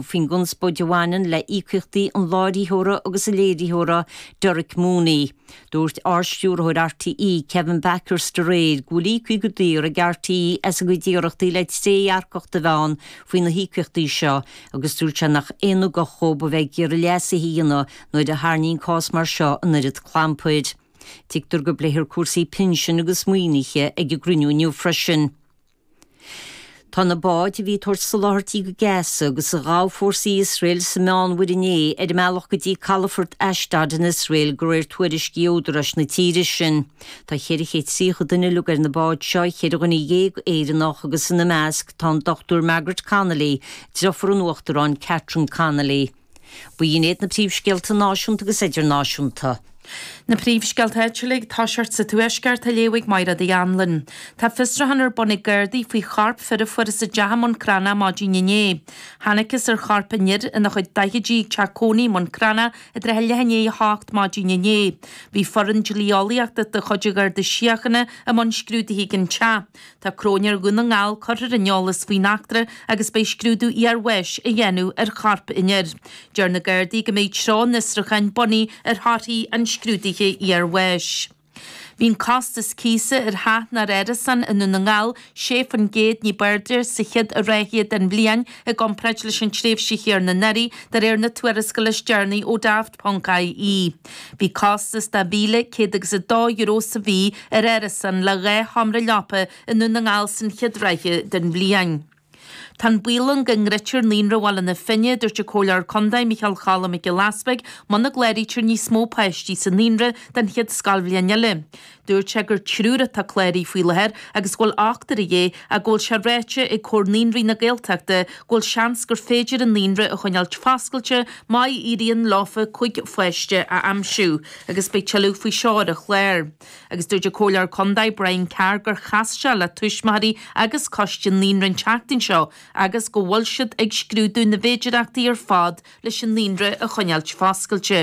faoin gconspóid a bhaineann le híocaíochtaí an láithreora agus an léiritheora, Derek Mooney. Dúirt Ard-Stiúrthóir RTÉ, Kevin Bakhurst aréir go bhfuil íocaí go daor ag RTÉ as a gcuid iarrachtaí le trédhearcacht a bheith ann faoi na híocaíochtaí seo agus dúirt sé nach aon ugach dhóibh a bheith ag iarraidh leasuithe a dhéanamh nuair a tharraingíonn cás mar seo an oiread clampair. Tuigtear go bpléifear cúrsaí pinsin agus maoinithe ag an gcruinniú inniu freisin. Tá na báid a bhí ag tabhairt soláthairtí go Gaza agus a ghabh fórsaí Iosrael sa Meánmhuir inné ar a mbealach go dtí calafort Ashdod in Iosrael, de réir tuairiscí údaráis na tíre sin. Tá 430 duine uilig ar na báid seo, ceithre dhuine dhéag Éireannach agus ina measc tá an Dr Margaret Connolly, deirfiúr an Uachtaráin Catherine Connolly. Ba iad iad na príomhscéalta náisiúnta agus idirnáisiúnta. Na príomhscéalta áitiúla i dtosach sa Tuaisceart, a léifidh Máire Ní Ghallchóir. Tá fiosrúchán ar bun ag Gardaí faoi chorp fir a fuarthas i dteach i mBun Cranncha maidin inné. Thángthas ar chorp an fhir ina chuid daichidí ag teach cónaí i mBun Cranncha i dtrátha leath i ndiaidh a hocht maidin inné. Bhí foireann dlí-eolaíochta de chuid an Gharda Síochána i mbun scrúdaithe ag an teach. Tá Cróinéir Dhún na nGall curtha ar an eolas faoin eachtra agus beidh scrúdú iarbháis á dhéanamh ar chorp an fhir. Deir na Gardaí go mbeidh treo an fhiosrúcháin bunaithe ar thorthaí an scrúdaithe iarbháis. Bhí an costas cíosa ar theach nó árasán i nDún na nGall 6 faoin gcéad ní b'airde sa chéad ráithe den bhliain i gcomparáid leis an tréimhse chéanna anuraidh, de réir na tuarascála is deireanaí ó Daft. ie. Bhí costas €1,202 sa mhí ar árasán le dhá sheomra leapa i nDún na nGall san chéad ráithe den bhliain. Tá an baol ann go ndruidfear naíonra Bhaile na Finne, a dúirt an Comhairleoir Contae Micheál Cholla Mac Giolla Easbuig, muna gcláraítear níos mó páistí sa naíonra don chéad scoilbhliain eile. Dúirt sé gur triúr atá cláraithe faoi láthair agus go bhfuil ochtar de dhíth ach go bhfuil sé ráite ag Comhar Naíonraí na Gaeltachta go bhfuil seans gur féidir an naíonra a choinneáil foscailte má éiríonn leo cuig pháiste a aimsiú agus beidh tuilleadh faoi seo ar an chlár. Agus dúirt an Comhairleoir Condae Brian Carr gur chas sé le túismitheoirí agus coiste an naíonra an tseachtain seo agus go bhfuil siad ag scrúdú na bhféidireachtaí ar fad leis an naíonra a choinneáil foscailte.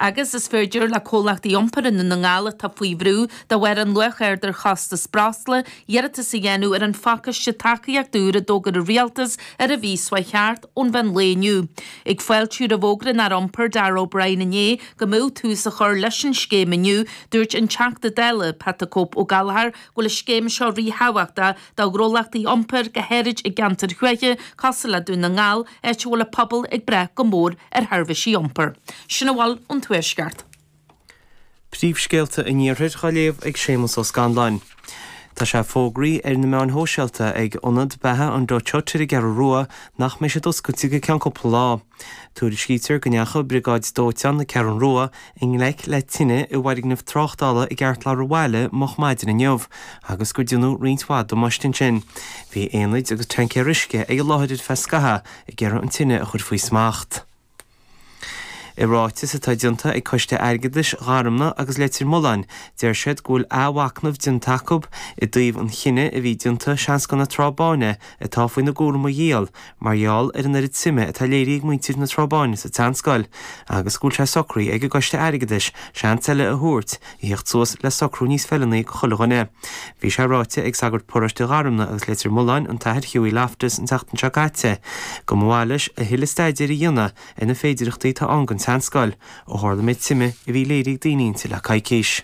agus is féidir le comhlachtaí iompair i nDún na nGall atá faoi bhrú de bharr an luach aird ar chostas breosla iarratas a dhéanamh ar an phacáiste tacaíochta úr a d'fhógair an Rialtas an mhí seo chuaigh thart ón mheán lae inniu. Ag fáiltiú roimh fhógra an Aire Iompair Darragh O'Brien inné go mbeadh tús á chur leis an scéim inniu, dúirt an Teachta Dála Pat the Cope Ó Gallchóir go bhfuil an scéim seo ríthábhachtach do ghnólachtaí iompair go háirid i gceantair thuaithe cosúil le Dún na nGall, áit a bhfuil a pobal ag brath go mór ar sheirbhísí iompair. Sin a bhfuil ón Tuaisceart. Príomhscéalta an Iarthair á léamh ag Séamus Ó Scanláin Tá sé fógraithe ar na meáin shóisialta ag Ionad Beatha an Dutch Hut ar an gCeathrú Rua nach mbeidh siad oscailte go ceann cúpla lá. Tuairiscítear go ndeachaigh briogáid dóiteáin na Ceathrún Rua i ngleic le tine i bhfoirgneamh tráchtála i gceartlár an bhaile moch maidin inniu agus gur déanadh roinnt mhaith damáiste ansin. Bhí aonaid agus tancaeir uisce ag an láthair ar feadh scaithea ag iarraidh an tine a chur faoi smacht. I ráiteas atá déanta ag Coiste Airgeadais Gharumna agus Leitir Mealláin, deir siad go bhfuil athmhacnamh déanta acu i dtaobh an chinnidh a bhí déanta seanscoil na Trá Báine atá faoina gcúram a dhíol mar gheall ar an oiread suime atá léirithe ag muintir na Trá Báine sa tseanscoil agus go bhfuil sé socraithe ag an gCoiste Airgeadais seans eile a thabhairt a theacht suas le socrú níos feiliúnaí go chuile dhuine. Bhí sé ráite ag sagart paróiste Gharumna agus Leitir Mealláin, an tAthair Hughie Loftus, an tseachtain seo caite go mba mhaith leis a thuilleadh staidéir a dhéanamh ar na féidearthachtaí atá ann don tseanscoil ó tharla an méid suime a bhí léirithe ag daoine inti le coicís.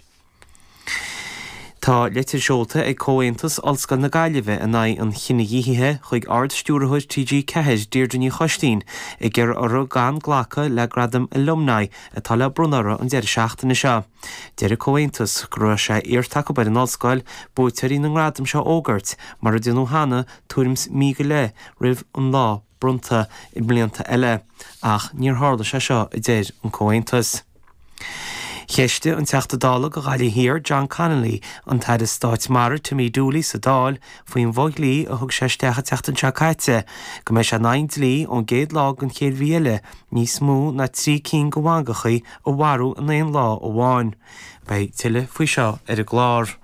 Tá litir seolta ag Comhaontas Ollscoil na Gaillimhe in aghaidh an chinedhíothaithe chuig Ard-Stiúrthóir TG4, Deirdre Ní Choistín, ag iarraidh orthu gan glacadh le Gradam Alumni atá le bronnadh orthu an deireadh seachtaine seo. Deir an Comhaontas go raibh sé iarrta acu ar an Ollscoil buaiteoirí na ngradam seo a fhógairt mar a déanadh cheana tuairim's mí go leith roimh an lá. bronnta i mblianta eile, ach níor tharla sé seo, a deir an Comhaontas. Cheistigh an Teachta Dála do Ghaillimh Thiar John Connolly an tAire Stáit Mara Timmy Dooley sa Dáil faoin bhfo-dhlí a thug sé isteach an tseachtain seo caite go mbeidh sé in aghaidh dlí ón gcéad lá den chéad mhí eile níos mó ná trí cinn de mhangachaí a mharú in aon lá amháin. Beidh tuilleadh faoi seo ar an gclár.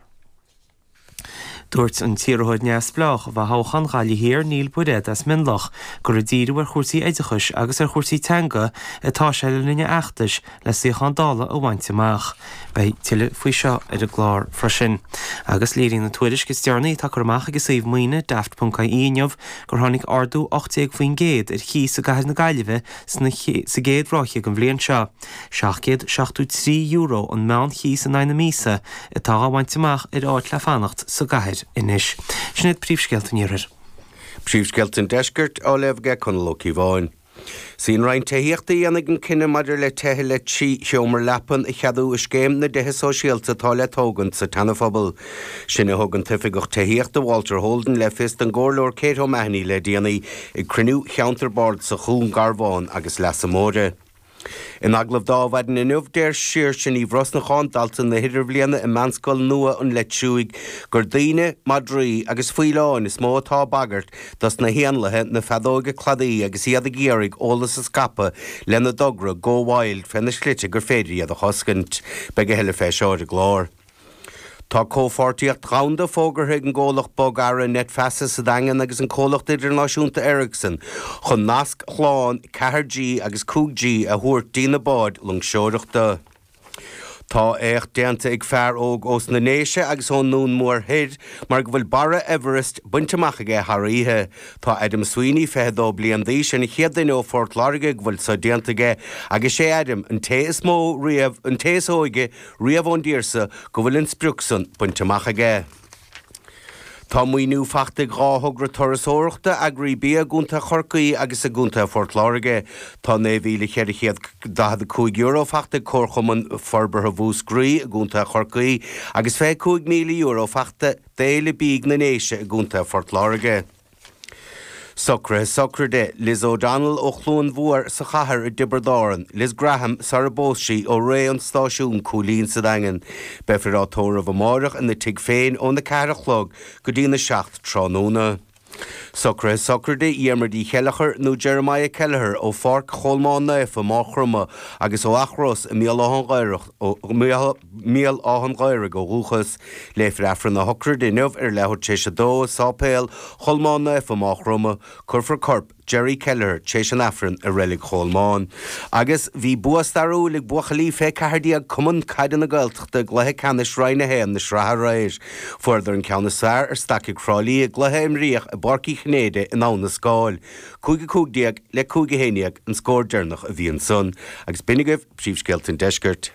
Dúirt an t-iarrthóir neamhspleách do thoghchán Ghaillimh Thiar Neil Bairéad as Mionlach gur ag díriú ar chúrsaí oideachais agus ar chúrsaí teanga atá sé le linn a fheachtais le suíochán Dála a bhaint amach. Beidh tuilleadh faoi seo ar an gclár freisin. Agus léirigh an tuairisc is déanaí atá curtha amach ag an suíomh maoine Daft. ie inniu gur tháinig ardú 18% ar chíos i gcathair na Gaillimhe sa gcéad ráithe den bhliain seo. €773 an meán-chíos in aghaidh na míosa atá á bhaint amach ar áit le fanacht sa gcathair anois. Sin iad príomhscéalta an Iarthair. Príomhscéalta an Deiscirt á léamh ag Conall Ó Cíobháin. Sí an Roinn Tithíochta a dhéanfaidh an cinneadh maidir le tithe le trí sheomra leapan a cheadú i Scéim na dTithe Sóisialta atá le tógaint sa tSeanaphobal. Sin a thug an tOifigeach Tithíochta Walter Holden le fios don gComhairleoir Kate O'Mahony le déanaí ag cruinniú Cheantar Bardasach Dhún Garbhán agus Leasa Móire. In agallamh dá mhaidin inniu, deir Saoirse Ní Bhrosnacháin, dalta na hidirbhliana i Meánscoil nua an Leith Triúigh, gur daoine, madraí agus faoileáin is mó atá ag bagairt dos na héanlaithe na feadóga cladaigh agus iad ag iarraidh eolas a scaipeadh lena dtogra 'Go Wild' fé na slite gur féidir iad a chosaint. Beidh a thuilleadh fé seo ar an gclár. Tá comhpháirtíocht dhomhanda fógartha ag an gcomhlacht bogearraí Net Feasa sa Daingean agus an gcomhlacht idirnáisiúnta Ericsson chun nasc shlán 4G agus 5G a thabhairt dtína báid loingseoireachta. Tá éacht déanta ag fear óg ós na Déise agus ón nDún Mór Thoir mar go bhfuil barra Everest bainte amach aige thar oíche. 'Sé Adam Sweeney, 22 bliain d'aois, an chéad duine ó Phort Láirge go bhfuil so déanta aige agus 'sé Adam an té is mó riamh, an té is óige riamh ón dtír seo go bhfuil an sprioc san bainte amach aige. Tá maoiniú faighte ag dhá thogra turasóireachta, eagraí bia i gContae Chorcaí agus i gContae Phort Láirge. Tá €9,445 faighte ag Comharchumann Forbartha Mhúscraí i gContae Chorcaí agus €25,000 faighte d'Fhéile Bídh na nDéise i gContae Phort Láirge. Socruithe Sochraide, Liz O'Donnell ó Chluain Mhór sa chathair i dTiobraid Árann, Liz Graham sarar phós sí ó Rae an Stáisiúin Cúilín sa Daingean. Beifear á tórramh amáireach ina tigh féin óna ceathair a chlog go dtí'n a seacht tráthnóna. Socruithe Sochraide, Dhiarmuid Uí Cheilleachair nó Jeremiah Kelleher ó Pháirc Cholmáin Naofa, Maigh Chromtha agus ó Each Ros i mBéal Átha'n Ghaorthaidh, mBéal Átha'n Ghaorthaidh ó dhúchas. Léifear Aifreann a shochraide inniu ar leathuair tar éis 2 i Séipéal Cholmáin Naofa, Maigh Chromtha. Cuirfear corp Jerry Kelleher tar éis an Aifrinn i Reilig Cholmáin. Agus bhí bua stairiúil ag buachaillí fé 14 Cumann Caide na Gaeltachta i gcluiche ceannais Roinn 1 na sraithe aréir. Fuaireadar an ceann is fearr ar Stacaigh Thrá Lí i gcluiche a imríodh i bPáirc Uí Chinnéide in Abhainn an Scáil. Cúig a cúig déag le cúig a haon dhéag an scór deireanach a bhí ansan. Agus b'in agaibh príomhscéalta an deiscirt.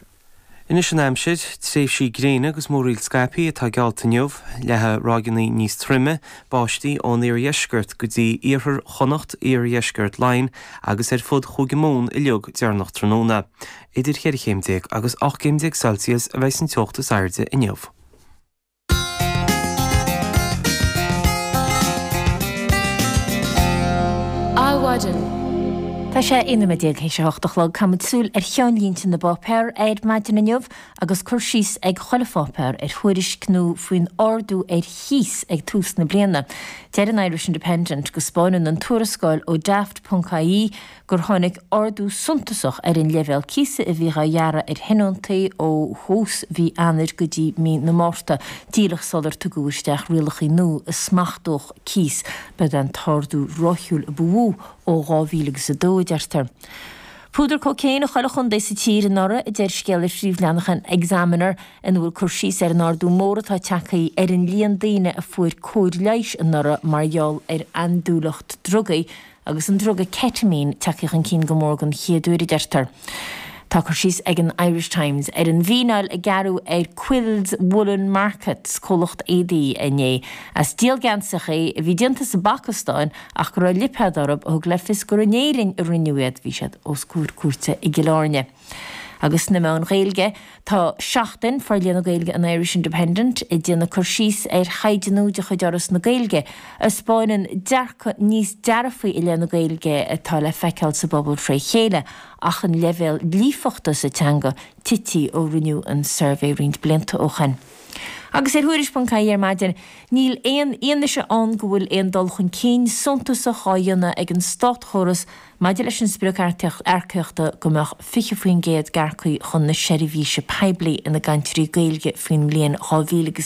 Anois an aimsir, tréimhsí gréine agus múraíl scaipthe atá geallta inniu, leathfaidh ráigeanna níos troime báistí ón iardheisceart go dtí iarthar Chonnacht, iardheisceart Laighean agus ar fud Chúige Mumhan uilig deireanach tráthnóna. Idir 14 chéim agus 18 gcéim Celsius a bheidh an teocht is airde inniu. Adhmhaidin. Tá sé 11 nóiméad théis a hocht a chlog. Caithfimid súil ar cheannlínte na bpáipéar ar maidin inniu agus cur síos ag chuile pháipéar ar thuairisc nua faoin ardú ar chíos ag tús na bliana. Deir an Irish Independent go 'spáineann an tuarascáil ó Daft. ie, gur tháinig ardú suntasach ar an leibhéal cíosa a bhíodh á ghearradh ar thionóntaí ó thús mhí Eanáir go dtí mí na Márta, díreach sular tugadh isteach rialacha nua a smachtódh cíos. Ba é an t-ardú ráithiúil a ba mhó ó 2002, a deirtear. Púdar cócaoin i chuile chontae sa tír anuraidh, a deir scéal ar phríomhleathnach an Examiner ina bhfuil cur síos ar an ardú mór atá tagtha ar an líon daoine a fuair cóir leighis anuraidh mar gheall ar andúileacht drugaí agus an druga Ketamine tagtha chun cinn go mór den chéad uair, a deirtear. Tá cur síos ag an Irish Times ar an bhfíneáil a gearradh ar Quills Woollen Markets, comhlacht éadaí, inné as díol geansaithe a bhí déanta sa bPacastáin ach go raibh lipéad orthu a thug le fios gur in Éirinn a rinneadh iad. Bhí siad os comhair cúirte i gCill Airne. agus sna meáin Ghaeilge. Tá Seachtain Forlíonadh Gaeilge an Irish Independent ag déanamh cur síos ar thaighde nua de chuid Fhoras na Gaeilge, a thaispeáineann dearcadh níos dearfaí i leith na Gaeilge atá le feiceáil sa bpobal fré chéile ach an leibhéal líofachta sa teanga tite ó rinneadh an suirbhé roinnt blianta ó shin. Agus ar Thuairisc.ie ar maidin, níl aon fhianaise ann go bhfuil aon dul chun cinn suntasach á dhéanamh ag an státchóras Maidir leis an sprioc earcaíochta go mbeadh 20% d'earcaigh chun na seirbhíse poiblí ina gcainteoirí Gaeilge faoin mbliain 2020,